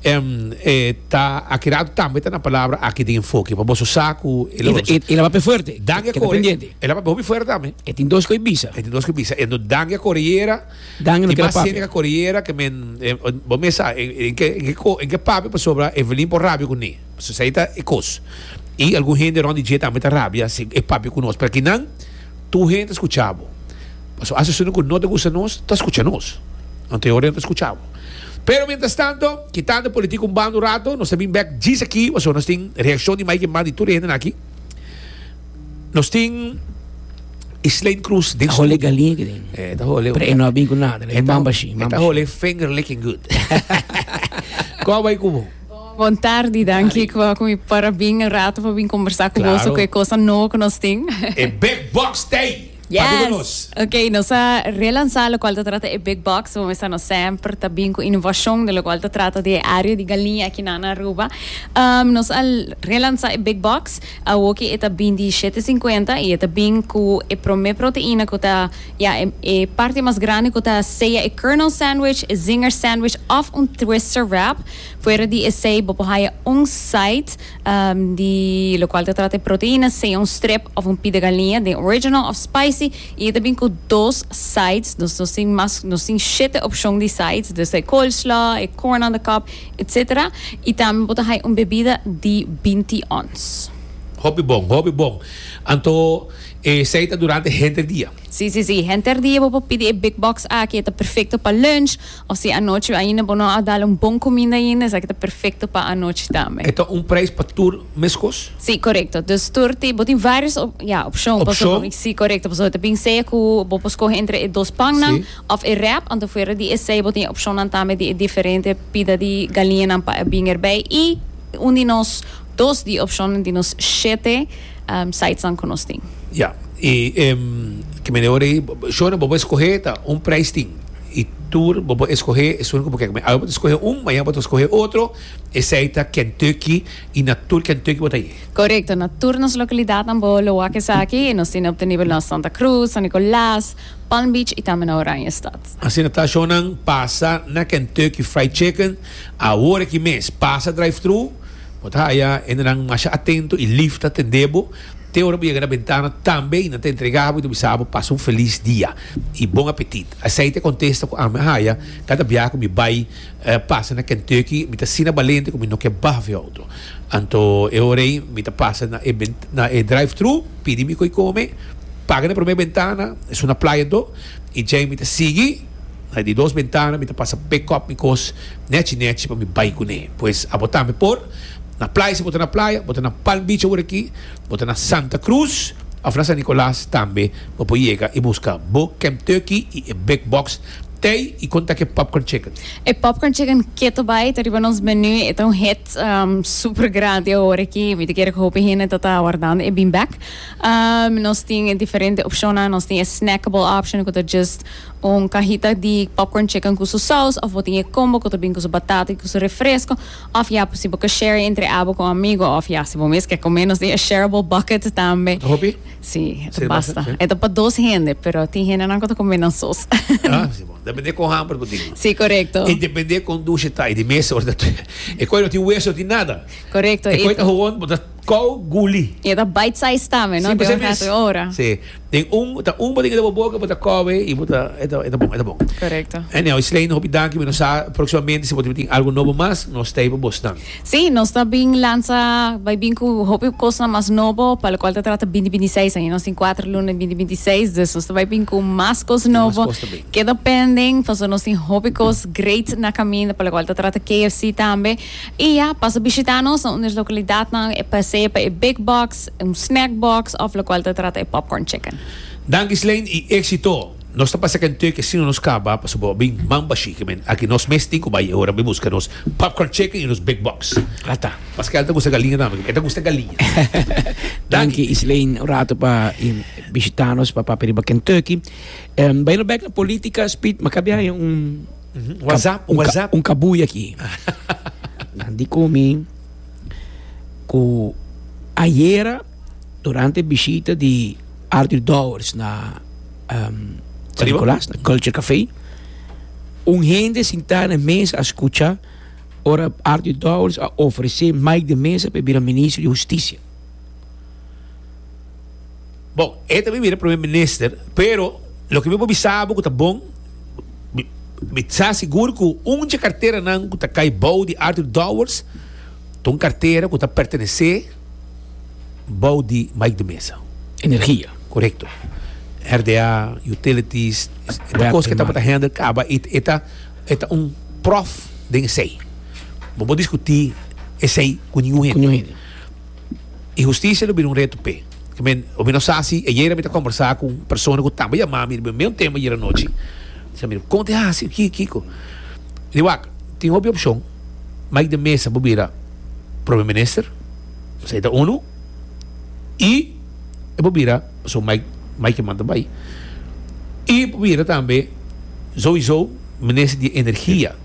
em e ta aki ratu tambe ta na palabra aki den enfoke pa boso sa ku e lo otro. E laba pe fuerte. Dan e kore. E laba hopi fuerte tambe. E tin dos koe bisa. E tin dos koe bisa. Enton dan e kore yera. Dan e no keda papia. Tin mas hende ke kore yera ke men bo mes sa en ke papia pasobra Evelin por rabia kuné. Pasobra esei ta e kos. I algun hende rònt di dje tambe ta rabia si e papia ku nos. Pero aki nan. Tur hende skucha bo. Pasobra asesonan ku no ta gusta nos, ta skucha nos. Nan ta e ora nan ta skucha bo. Pero mientras tanto, kitando politik un banda un rato, nos ta bin bek djis aki pasobra nos tin reakshon di mai ke mas di tur e hendenan aki. Nos tin e Slein Cruz den studio. E ta hole galiña. E no a bin ku nada. E ta hole finger licking good. Kua bai ku bo? Bon tardi y danki cu mi para bin e rato pa bin combersa cu boso cu e cosa nobo cu nos tin. E big box day padu cu nos. Yes! Ok, nos a relansa locual ta trata e big box. Bo mester nos semper ta bin cu innovacion den locual ta trata di e area di galiña aki na Aruba. Nos a relansa e big box. Awoki e ta bin di shete sinkuenta y e ta bin cu e prome proteina cu ta ya e parti mas grandi cu ta sea e kernel sandwich, e zinger sandwich of un twister wrap. Fuera di esei bo por haya un site di locual ta trata di proteina, sea un strip of un pita galiña den original of spicy y e ta bin cu dos sides, nos nos tin mas nos tin shete opcion di sides desde e coleslaw, e corn on the cob etc. Y tambe bo ta haya un bebida di binti ons. Hopi bon, hopi bon. Anto esei ta durante henter dia? Si si si, henter dia bo por pidi e big box aki e ta perfecto pa lunch. O si anochi ainda bo no a dal un bon cuminda ainda, esaki ta perfecto pa anochi tambe. E ta un prijs pa tur mescos? Si, corecto. Dus tur tin, bo tin varios op, ya, opcion, pasobra, Opcion? si, corecto, pasobra ta bin sea cu bo por scoge entre e dos pannan Si. of e wrap, anto fuera di esey bo tin e opcionnan tambe di e diferente pida di galiñanan pa e bin erbij y un di nos, dos di e opcionnan di nos shete sidesnan cu nos tin. Ya, y kimen di ora ei, shornan bo por escoge ta un prijs tin. I tur bo por eskohé esun ku bo ke kuma. Awe bo ta skohe un, mañana bo ta skohe otro, esei ta Kentucky i na tur Kentucky bo ta ye. Korekto, na tur nos lokalidatnan bo lo wak esaki. Nos tin op den nivel nos Santa Cruz, San Nicolas, Palm Beach i tambe na Oranjestad. Asina ta ashonan pasa na Kentucky Fried Chicken awor aki mes. Pasa drive-thru, bo ta haya hendenan masha atento i lif ta tendé bo. Te ora bo yega na bentana tambe y nan ta entrega bo y ta bisa bo pasa un felis dia y bon apetit. Esey ta contesta cu ami a haya cada biaha cu mi bay pasa na Kentucky, mi ta asina balente cu mi no ke baha fe auto. Anto e ora ey mi ta pasa na e na e drive-thru, pidi mi cu y come, paga na e prome bentana, esun na playa do, y djey mi ta sigui na di dos bentana, mi ta pasa pick-up mi cos nechi nechi pa mi bay cune. Pues abo tambe por. Na playa si bo ta na playa, bo ta na Palm Beach awor aki, bo ta na Santa Cruz of na San Nicolas tambe bo por yega y busca bo Camp Turkey y e Big Box Thai y con ta ke Popcorn Chicken. E Popcorn Chicken keto bay ta riba nos menu, e ta un hit super grandi awor aki, mi ta kere cu hopi hende ta ta awardando e bin bek. Nos tin diferente opcionnan, nos tin e snackable option cu ta just un cajita di Popcorn Chicken cu su saus of bo tin e combo cu ta bin cu su batata y cu su refresco. Of ya pues si bo ke share entre abo con amigo of ya si bo mes ke come nos tin e shareable bucket tambe. Ta hopi? Si, e basta. E ta pa dos hende pero tin hendenan cu ta come nan sos. Ah, si bon. Depende con hamber bo tin. Si, corecto. Y depende con dushe ta y di mesa ora ta. E coe no tin hueso no tin nada. Corecto. E coe ta hoon bo ta. Kou guli. Y e ta bite size tambe, no? Den un rato, un ora. Sí, den un, ta un bo den bo boca, bo ta kowe y bo ta, e ta, e ta bon, e ta bon. Correcto. Anyhow, Slayne, hopi danki, mi no sa proximamente si bo tin algo nobo mas, nos ta hipo bos nan. Sí, nos ta bin lansa, bai bin cu hopi cosnan mas nobo, pa locual ta trata binti binti seis aña. Nos tin cuater luna den binti binti seis, dus nos ta bai bin cu mas cos Tin mas nobo. cos ta bin. Keda pending, pasobra nos tin hopi cos great na caminda, pa locual ta trata KFC tambe. E ya, pasa bishita nos na un di nos lokalidatnan, e pasea pa e Big Box, un snack box òf lokual ta trata e popcorn chicken. Danki Slane i Exito! Nos ta pasa kenteu ke sino nos kaba paso bo a bin mamba shiki men. Aki nos mes tin ku bai e ora bin buska nos popcorn chicken i nos Big Box. Ata. Paske al ta gusta galiña tambe paske e ta gusta galiña. Danki Slane un ratu pa e bishita nos pa papia riba kenteu. Bai no bek na politica speed maka biaha un. WhatsApp, un, WhatsApp. Ka, un kabuy aki. Nan di komi ku ayera durante bishita di Arthur Dowers na um, San Nicolas, na Culture Café, un hende sintá na mesa a skucha ora Arthur Dowers a ofresé Mike de Mesa pa bira ministro di Hustisia. Bon, e ta bira Primer Minister, pero loke mi por bisa bo ku ta bon, mi, mi sa sigur ku un dje karteranan ku ta kai bou di Arthur Dowers ta un kartera ku ta pertenesé bou di Mike de Meza. Energia. Korekto. RDA, utilities, e ta kos ku e tabata handle kaba. E, e ta, e ta un prof den esei. Bo por diskutí esei ku ningun hende. Ku ningun hende. I hustisia lo bira un reto p'e. I men, hopi no sa si ayera mi ta kombersá ku un persona ku tambe yamá mi riba meun tema ayera anochi. Mi fla, Mira, kon ta e hasi aki, Kiko? Mi di, Wak, tin hopi opshon. Mike de Meza por bira Prome Minister, pasobra e ta unu, i e por bira, pasobra Mike, Mike Herman ta bai, i e por bira tambe, sowieso, Minister di Energia.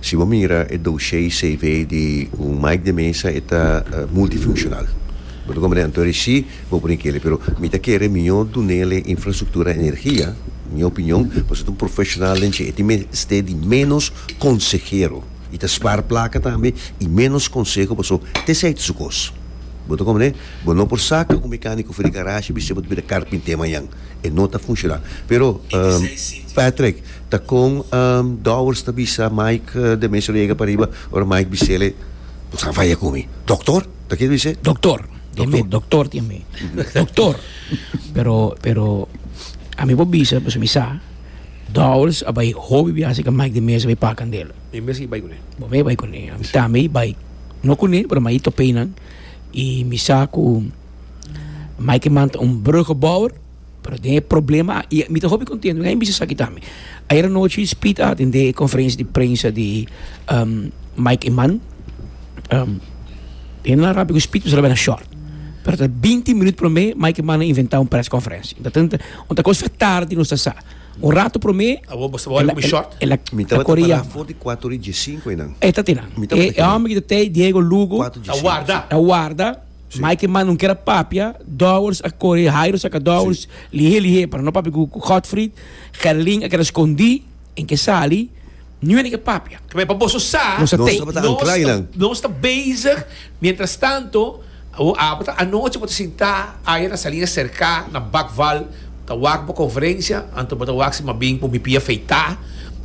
Si bo mira e doshei CV di un Mike de Mesa e ta multifuncional. Bo ta comprende anto reci bo pone keli pero mi ta kere miño dunele infrastructura energia, mi opinion, pasobra ta un profesional den dje e tin mester di menos consehero y ta spar placa tambe y menos conseho pasobra tese ta su cos. Bo ta comprende? Bo no por saca un mecanico for di garashi y bisti bo ta bira carpinte mañan. E no ta funcional. Pero Patrick. Ta kon Dowers ta bisa Mike de Mesuriega pariba ora Mike bisele, Bo sa vaya ku mi, doktor? Ta kere bis'é? Doktor, tin mi, doktor tin mi, doktor! Pero, pero ami por bisa pasobra mi sa Dowers a bai hopi biaha serka Mike de Mesa bai pakan del. Mi mes i bai kuné. Bo mes i bai kuné. Ami tambe i bai, no kuné, pero mi a i top'é nan i mi sa ku Mike e manta un brugeboer. Pero den e problema, i mi ta hopi kontentu den e misa esaki tambe. Ayera nochi Speed a atendé e konferensia di prensa di Mike Eman. E na rampi ku Speed pasobra bira short. Pero ta binti minut promé Mike Eman a inventá un press konferensia. Unda ta unda ta kos fia tardi nos ta sa. Un ratu promé Abo boso bo hopi ku short? el a Mi tabata kore pará yama. for di kuatu ora i diesinku einan. E ta te nan. Mi tabata E kinan. hòmber ku ta tei Diego Lugo Kuatu diesinku, si. ta warda. ta warda. Mike manda un ker a papia, Dowers a kore, Jairo saka Dowers lihé lihé para no papia ku Godfried, Gerlin a keda skondí en ke sali, nu aneke papia. Keme pa boso sa, Nos a tei. Nos tabata ancla nos ta einan. nos ta bezig, mientras tanto, abo ta anochi bo ta sintá aya na Salinas Cercá, na Bakval, Ta wak bo konferensia, anto bo ta wak si mas bin ku mi pia feitá,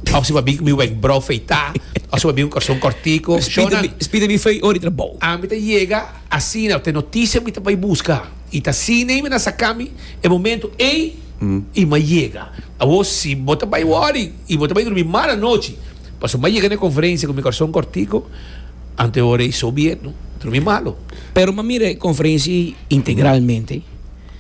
òf si mas bin ku mi wèkbrou feitá, òf si mas bin ku kòrson kòrtiku. Shonnan, Spita mi fei ora di trabou. Ami ta yega asina, ku te notisia mi ta bai buska, i ta asina i mi na saka mi e momentu ei i mi a yega. Awor, si bo ta bai wòri i bo ta bai durmi mal anochi pasobra mi a yega na e konferensia ku mi kòrson kòrtiku, anto e ora ei so bien, no? Durmi malo. Pero mi a mira e konferensia ei integralmente.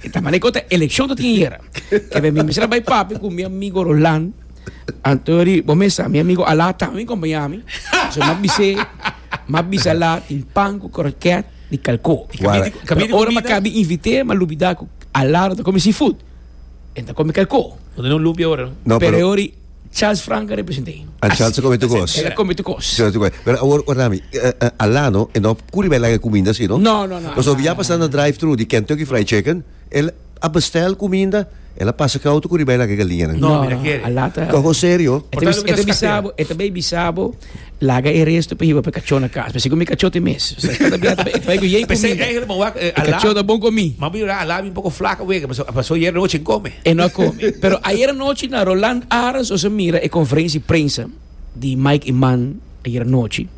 E ta mané kota elekshon ta tin ayera. Ke b'e mi mester a bai papia ku mi amigo Roland. Anto yo di, Bo mester, mi amigo Alá tambe bin kompañá mi. So m'a bis'é, m'a bisa Alá tin pan ku krokèt di kalkó. Wala. Pero ora m'a kabi invit'é, m'a lubidá ku Alá no ta kome seafood. E ta kome kalkó. Bo ta den un lumpia ora, no? No, pero. Pero yo di. Charles Frank representa him. A Charles a come tu cos. Ela come tu cos. Charles tu cos. Pero awor or nami, uh, eh, uh, eh, alano, e no curi bij laga comida sino. No, no, no. Paso via pasando drive-thru di Kentucky Fried Chicken, el a bestel comida, el a pasa cauto curi bij laga galinha. No, no, no. Alata. Cojo serio. Eta bisabo, eta bij bisabo. Laga e resto pa hiba pa e kachó na kas. P'esei ku mi kachó te mes. P'esei èigle bo wak e Alá. M'a bin yurá Alá a bin un poko flaka wega, pasó ayer anochi e no kome. E no a kome. Pero ayer anochi na Roland Arends nos a mira e konferensia di prensa di Mike Eman ayer anochi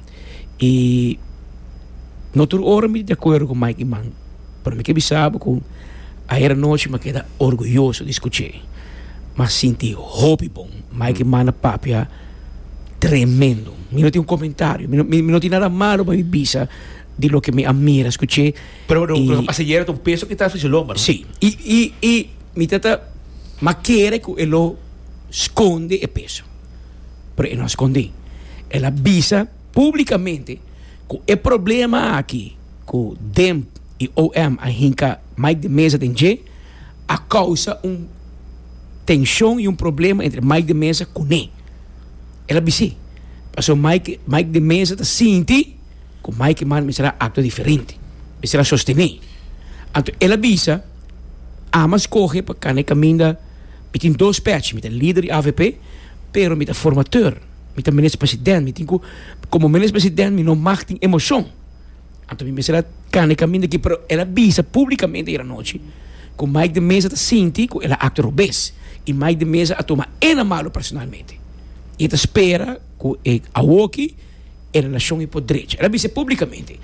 i no tur ora mi di acuerdo ku Mike Eman. Pero mi ke bisa bo ku ayer anochi mi a keda orguyoso di skuch'é. Mi a sinti hopi bon. Mikey manda papia tremendo. Mi no tin un komentario. Mi no, mi no tin nada malu pa mi bisa di loke mi a mira, skuch'é. Pero loke lo pasa ayer ta un peso ku ta aflishi lomba, no? Sí. I, i, i mi ta ta ma kere ku e lo skonde e peso. Pero e no a skond'é. El a bisa publikamente. Ku e problema aki ku demp i om a hinka Mike de Meza den dje, a kousa un tenshon i un problema entre Mike de Meza kuné. El a bis'é pasobra Mike Mike de Meza ta sinti ku Mike Mann mester a aktua diferente, mester a sostené. Anto el a bisa, Ama skohe pa kana e kaminda, mi tin dos pèch, mi ta lider di avp, pero mi ta formateur. Mi ta minister president, mi tin ku como minister president mi no mag tin emocion. Anto mi mester a kanda e kaminda aki, pero el a bisa públikamente ayer anochi ku Mike de Meza ta sinti ku el a aktua robes i Mike de Meza a tuma e na malu personalmente. I e ta spera ku e awoki e relashon i por drecha. El a bisa e públikamente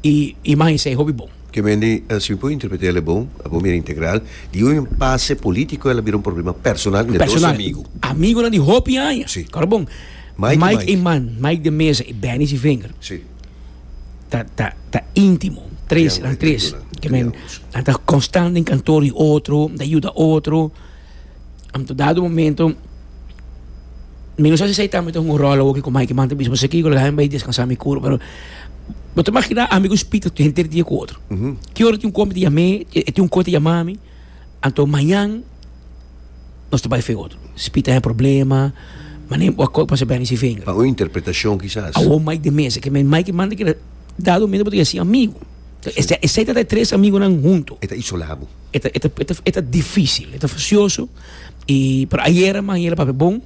i imagen sa e hopi bon. Ke men di, si mi por interpreta el e bon, a bon bira integral, di un impase politico el a bira un problema personal den e dos amigu. Amigunan di hopi aña. Si. Kor bon, Mike e man, Mike de Meza i Bennis i Vinger, Si. ta ta ta intimo, tres, nan tres, ke men nan ta konstant den kantoor di otro, nan ta yuda otro. Am ta dado momento mi no sa si esei ta mi ta hunga un ròl awor ki ku Mikey man ta bisa pasobra kiko lo deha mi bai deskansa mi kurpa pero bo ta imaginá ami ku Spita ta henter dia ku otro ki ora tin un kompi ta yam'é e tin un kos ta yama mi anto mañan nos ta bai fe otro Spita haya problema mané bo a kos pasa bèni si venga awor Mike de mesa ke Mikey man ta keda dado momento bo ta yasí amigu. Ta esei, esei ta ta e tres amigonan huntu. E ta isolá bo. E ta, e ta, e ta, e ta difísil, e ta fasioso. I, pero ayera manera papia bon,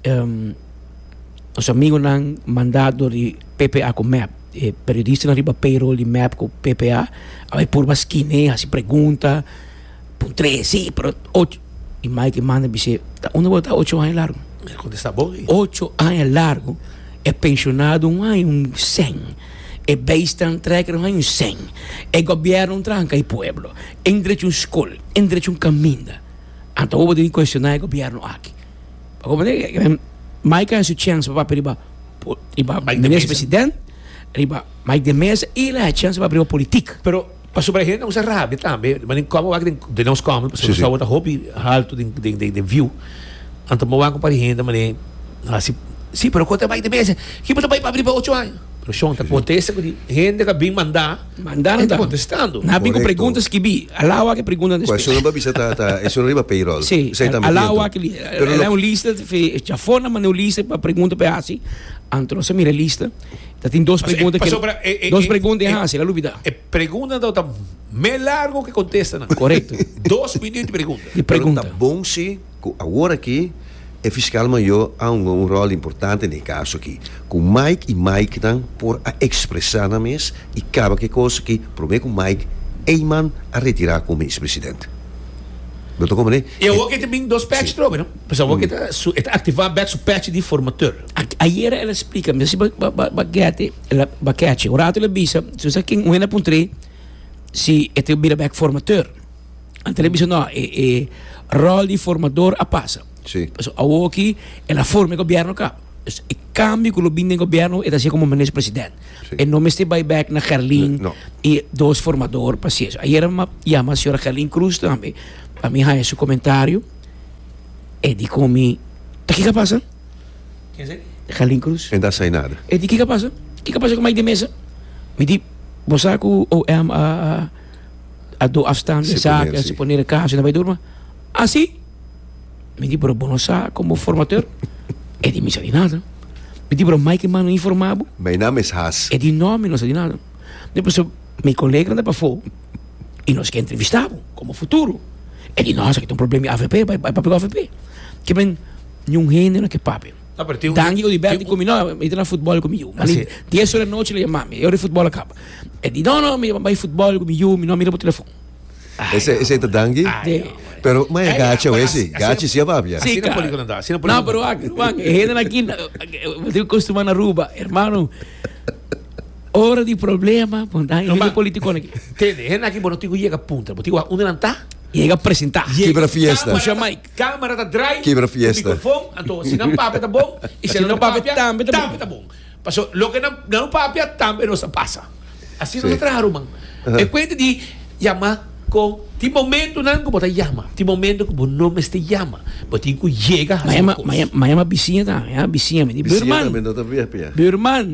em, nos amigonan mandá dor di PPA ku mep, e periodistanan riba payroll di mep ku PPA, a bai purba skine'e, hasi pregunta, puntr'e sí, pero och, i Mikey manda bis'é, ta unda bo ta ta ocho aña largu? E kontestá bon ei. Ocho aña largu, e pensionado un aña, un sèn. E beestnan trek ron hay un seng. E gobièrnoun tranka e pueblo. E ndrecha un skol. E ndrecha un kaminda. Anto bo bo ta bin kuestioná e gobièrnu aki? Mike a hasi su chèns pa papia riba riba Mike de Meza, riba Mike de Meza i el a hasi chèns pa papia riba politik. Pero. Pasobra por hende a usa radio tambe, di manera cómodo aki den nos kamer, pasobra nos tabata hopi halto den den view, anto bo a wak pari hende manera hasi, sí, pero kon ta bai di mesa, ki bo ta bai pa abri pa ocho aña? Pero Shon ta kontesta ku di hende ku a bin manda, e ta kontestando. Nan a bin ku pregunta skibí, alao aki pregunta nan spela. Esuna bo a bisa ta ta esuna riba payroll. Sí, alao aki li, e un lista, chafona manda un lista pa pregunta pa e hasi, anto nos a mira e lista. Ta tin dos pregunta ke pasobra e e dos pregunta e hasi, la lubida. E pregunta nan ta me largo ke kontestanan. Korekto. Dos minüt di pregunta. Di pregunta. Pero ta bon si ku awor aki e fiskal mayo a hunga un ròl importante na e kaso aki. Ku Mike i Mike nan por a ekspresá nan mes i kaba ku e kos ki promé ku Mike ei man a retirá komo Minis President. Lo ta kòmp mané. I awor ke ta bin dos pèch trobe no. Pasobra awor ke ta su e ta aktivá bèk su pèch di formateur. Ayera el a splica mi si ba gete ba catchy un rato el a bisa su sa ken wena puntre si e ta bira bek formateur ante el a bisa no e rol di formador a pasa pasobra awor aki el a forma e gobierno ka dus e cambio cu lo bini den gobierno e ta haciendo como minister president e no mester bay bek na Gerlin y dos formador pa haci eso ayera mi a yama señora Gerlin Cruz tambe pa mi haya su comentario e di con mi ta kico a pasa. Galen Cruz. E da sainada. E di kiko a pasa? Kiko a pasa ku Mike de Mesa? Mi di, bo sa ku OM a a do afstand e sa, a siponer e kaso i na bai durma? Asi? Mi di, bro, bo no sa komo formateur? E di, mi sa di nada. Mi di, bro, Mike Eman no a informá bo? Mi naam is Haas. E di, no, mi no sa di nada. Mi di, pasobra mi koleganan ta pafó i nos ke entrevistá bo komo futuro. E di, no, esaki ta un problema di avp, bai papia ku avp. Ke men. Niun hende no ke papia. Danki ku di bèl di ku mi, no, mi ta na futbòl ku mi yu. Mas di dies ora di anochi lo yama mi, e ora di futbòl a kaba. E di, no, no, mi ta bai futbòl ku mi yu, mi no a mira bo telefòn. Esei ta danki? Pero mai a gacha we si, gachi si a papia. Si ka. No, pero wak, wak, e hende na kinda, bo tin ku kostumá na Aruba, hermano, ora di problema bo na hende politikon aki. Tende, e hende aki bo no tin ku yega puntra, bo tin ku haña unda nan ta? Yega presentá. Kibra fiesta. Pusha mic. Camera ta draai cu microfon anto si nan papia ta bon y si nan papia tambe ta bon pasobra loke nan nan papia tambe nos a pasa asi nos a traha ruman e cuenta di yama con tin momentonan cu bo ta yama tin momento cu bo no mester yama bo tin cu yega haci un cos. Ma yama bisiña tambe ha bisiña mi di buurman buurman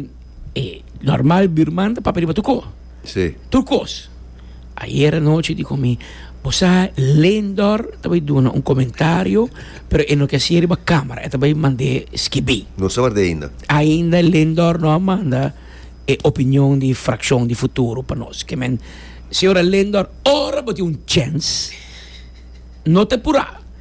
e normal buurman ta papia riba tu co. Sí. Tur kos. Ayer anochi di ku mi, Bo sa, Lindor ta bai duna un komentario, pero e no ke hasié riba kámara, e ta bai mand'é skibí. No sa ward'é ainda. Ainda Lindor no a manda e opinion di frakshon di Futuro pa nos. Ke men, señora Lindor, ora bo tin un chèns, no ta purá.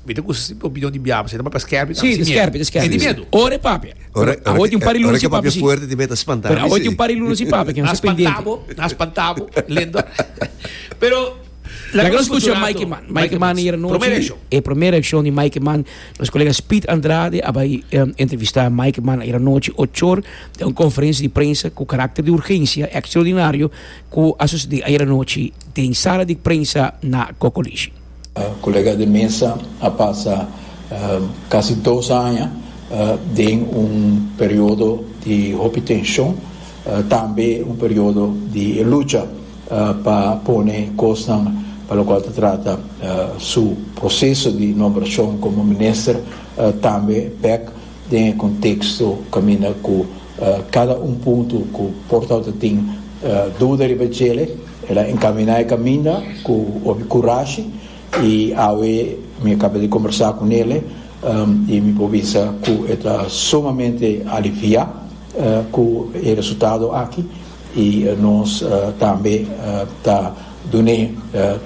Mi ta kusa si opinion di Biaba, si ta papia skèpi ta hasi miedu. E di miedu. Ora e papia. Awor tin un par di luna si papia si. Pero awor tin un par di luna si papia. Nan spanta bo, nan spanta bo, Lindor. Pero laga nos kucha Mikey Man. Mikey Man ayer anochi, e promé reakshon di Mikey Man. Nos kolega Speed Andrade a bai entrevistá Mikey Man ayer anochi ochor den un konferensia di prensa ku karakter di urgensia ekstraordinario ku a sosodé ayer anochi den sala di prensa na Kokolishi. Colega de mesa a pasa casi dos aña den un periodo di hopi tension, tambe un periodo di e lucha pa pone cosnan pa locual ta trata su proceso di nombracion como minister tambe bek den e contexto caminda cu cada un punto cu portao ta tin duda riba djele. El a encaminá e caminda cu hopi curashi y awe mi a caba di conversa cu nele y mi por bisa cu e ta sumamente aliviá cu e resultado aki y nos tambe ta dun'e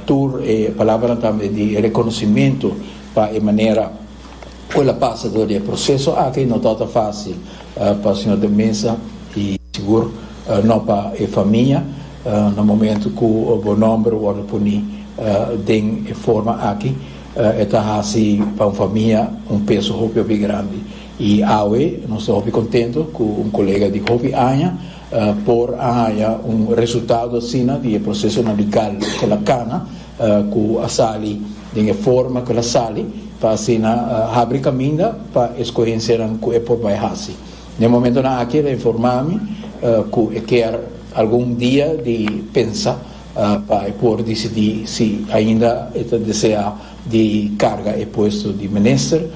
tur e palabranan tambe di reconocimento pa e manera cu el a pasa dor di e proceso aki, no tabata facil pa Sr. de Meza y sigur no pa e famia na momento cu bo nomber wordo poni den e forma aki e ta haci pa un famia un peso hopi hopi grandi y awe nos ta hopi contento cu un colega di hopi aña por a haya un resultado asina di e procesonan legal cu el a cana. ku a sali den e forma ku el a sali pa asina habri kaminda pa e skohensianan ku e por bai hasi. Na e momentonan aki el a informá mi ku e kier algun dia di pensa pa e por disidí si ainda e ta deseá di karga e puesto di minister.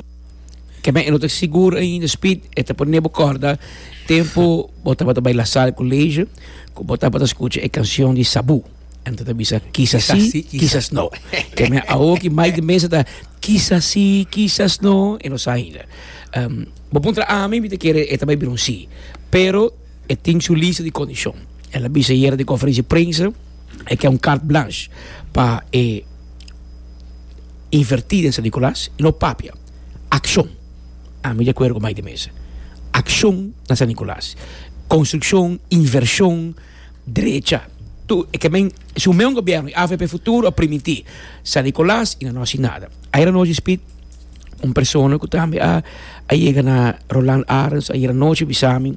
Keme e no ta sigur ainda, Speed, e ta pone bo kòrda tempu bo tabata bai La Salle College ku bo tabata skucha e kanshon di Sabu. Anto ta bisa kisas Kisas sí, si, kisas kisas no. Ke me awo ki mai de mesa ta kisas sí, kisas no, e no sa ainda. Um, bo puntra ami, mi te kere e ta bai bira un sí. Pero e tin su lista di kondishon. El a bisa yera den konferensia di prensa, e ke un carte blanche pa e invertí den San Nicolas, i no papia, akshon. Ami di akuerdo ku mai de mesa. Akshon na San Nicolas. Konstrukshon, invershon. drecha. Tu e ke men si un meun gobièrnu i avp futuro a primití San Nicolas i no nos si nada. Ayera anochi Speed un persona ku tambe a yega na Roland Arens ayera anochi bisa mi.